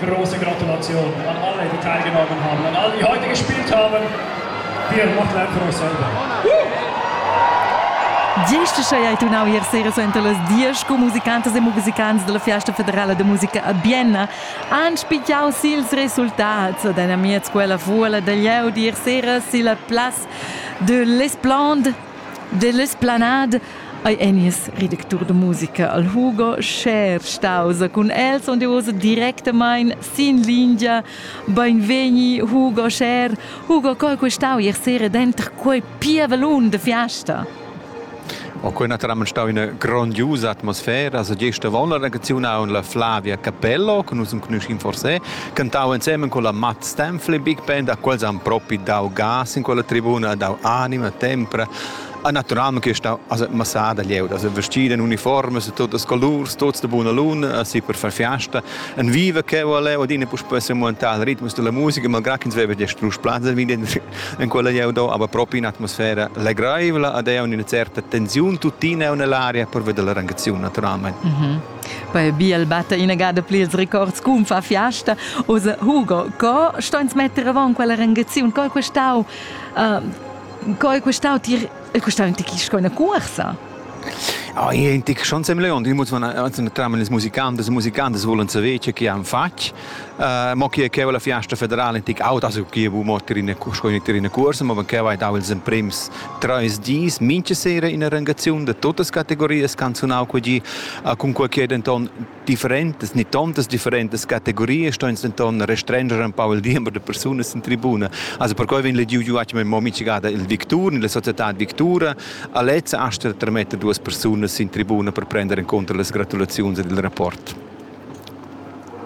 große Gratulation an alle, die teilgenommen haben, an alle, die heute gespielt haben. Wir machen einfach euch selber. Gesta sei tu nau hier sera senta las dias com musicantas e musicants della Fiesta Federale de Musica a Bienna han spigiau sils resultats ed han amiez quella fuola da leu dir sera silla place de l'Esplande de l'esplanade Ei ei nies redactur da musica al Hugo Schär staus cun els und uss directamein sin lingia. Beinvegni Hugo Schär. Hugo, co hai questau ier sera denter quei pievelun de fiasta? O quei naturalmein stau ina grondiusa atmosfera, also gesta von la regaziun aun la Flavia Capello, che nus conoscim forse, cantau insieme con la Matt Stanfley Big Band, a quels han propi dau gas in quella tribuna, dau anima, tempra A natural che sta as massada lieu, as vestida in uniformas, totas colurs, tots de buna luna, assi per far fiasta. En viva che vole, od ina puspei se montar ritmus della musica, malgrà che ins veva già strus plazza in quella lieu do, aber proprio in atmosfera legraivla, ad è una certa tensione tuttina nell'aria per vedere l'arrangazione naturalmente. Mm -hmm. Poi Biel batte in gada pli ils records cum fa fiasta. Ose Hugo, co sto ins mettere avant quella rangazione? Co è quest'au uh, Co è questau tir il custau in tic sco una cuorsa? Ah, in tic schon sem leon, di muss man tramen les musicantes e musicantes volen saver che chi han fatg. Uh, mo chi che la fiasta federale in tic auta so chi bu mo tirina sco in tirina corsa, ma che vai dau ils emprems treis dis minche sera in arrangazione de totes categorias canzonau quegi, uh, cun quei che denton Differentas ni tontas differentas categorias ston ins denton restrenscher empau il diember de persunas sin tribuna. Also perquei vegn lediu giu atgna mo mintgada il victur, nella societad victura, a lezza asta de trametter duas persunas sin tribuna per prender enconter las gratulaziuns ed il rapport.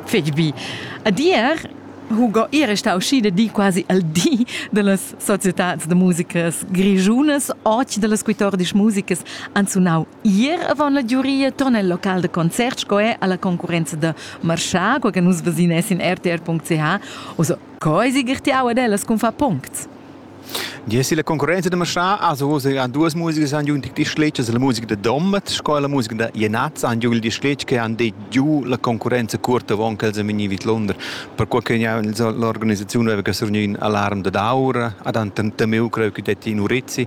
Fetg bi. Ad ier Hugo era stau schi da di quasi al di dallas societads da musicas grischunas, och dallas quitordis musicas han sunau Ier avon la giuria ton el local de concert sco è alla concurrenza da marchà, qua che nus vesinas in rtr.ch, also coi si girtiau ad ellas cun fa puncts. Yes, la concorrenza de marchà ha so ha duas musica san giun die Schläger, la musica de Dommet, sco la musica de Jenaz han giun die Schläger che han det giu la concorrenza curta avon che els vegni vid Londra. Per qual che ja l'organisazione aveva che surgni in alarm de daura, ad han tameu creu che detti in Urizzi.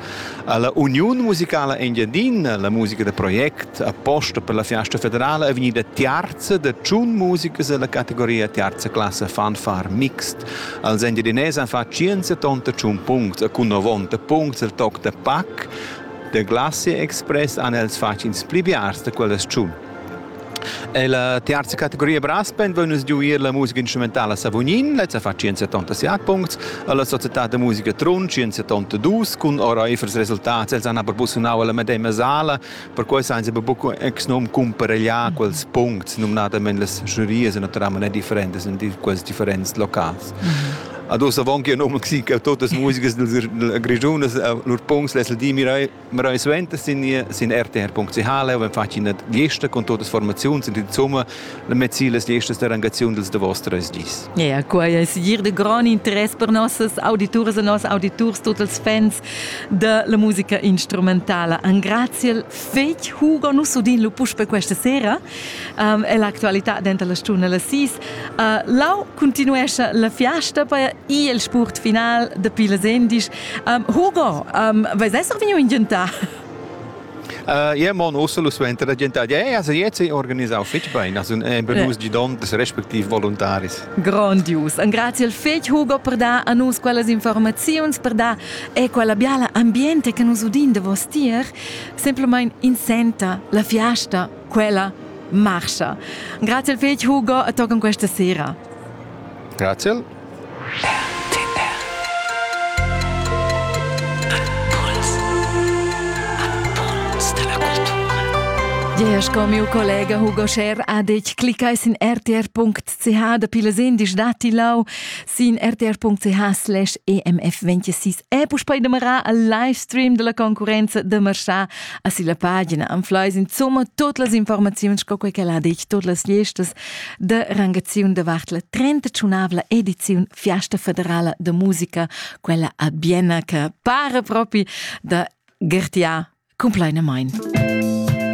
Ha la Uniun musicala Engiadina, la musica da project apposta per la fiasta federala è vegnida tiarza da tschun musicas dalla categoria tiarza classa fanfare mixt. Els Engiadinès han fatg 178 puncts e cun 90 puncts el toc da pac. Da Glacier Express han els fatg ins pli biars da quella tschun. Ella terza categoria Braspen vegn nus giuir la musica instrumentala Savognin, lezza fa 177 puncts, alla società da musica Trun 172 cun oreifers resultats. Els han aber busunau alla medema sala, perquei san sie buc ex num cumparegliar quels puncts, numnadamein las giurias naturalmente differentes in quels differents locals. Mm -hmm. Ad ossa avon che num si che totas musica dils Grigiunas lur punts les di mirai Wir haben suenter sind hier sind rtr.ch und fatg eine Geste con todas formazions in insomma la mezila estas der engazion dels de vostres gis. Ja, ja, quai es dir de gran interess per nossas auditores e nos auditors, tots els fans de la musica instrumentala. An grazie fec Hugo nus udin lu puspe questa sera um, e l'actualità dentro la stuna la sis. Uh, lau continuesce la fiasta per i il sport final de Pilas Endisch Um, Hugo, um, vais esser vegnu in gientà? Uh, ja, mon Ursula suenter la gente ja, also jetzt è organisato fitch bene, also è benus di don des respectiv voluntaris. Grondius. Un grazie al fetch Hugo per dar a nus quellas informazioni, per dar e quella biala ambiente che nus udin de vos tier, semplicemente insenta la fiasta, quella marcha. Grazie al fetch Hugo e toccan questa sera. Grazie. Jeher sco miu collega Hugo Scher ha detg, cliccai sin rtr.ch dapi les indisch dati lau sin rtr.ch slash emf 26 e puspei demarà al livestream della concurenza de marchà a silla pagina. Am flais insomma tot las informaziuns sco quei che ha detg, tot las listas de rangaziun davart la 38 ediziun Fiesta Federala de Musica, quella a Bienna che pare propi da Gertia cumplaina mein.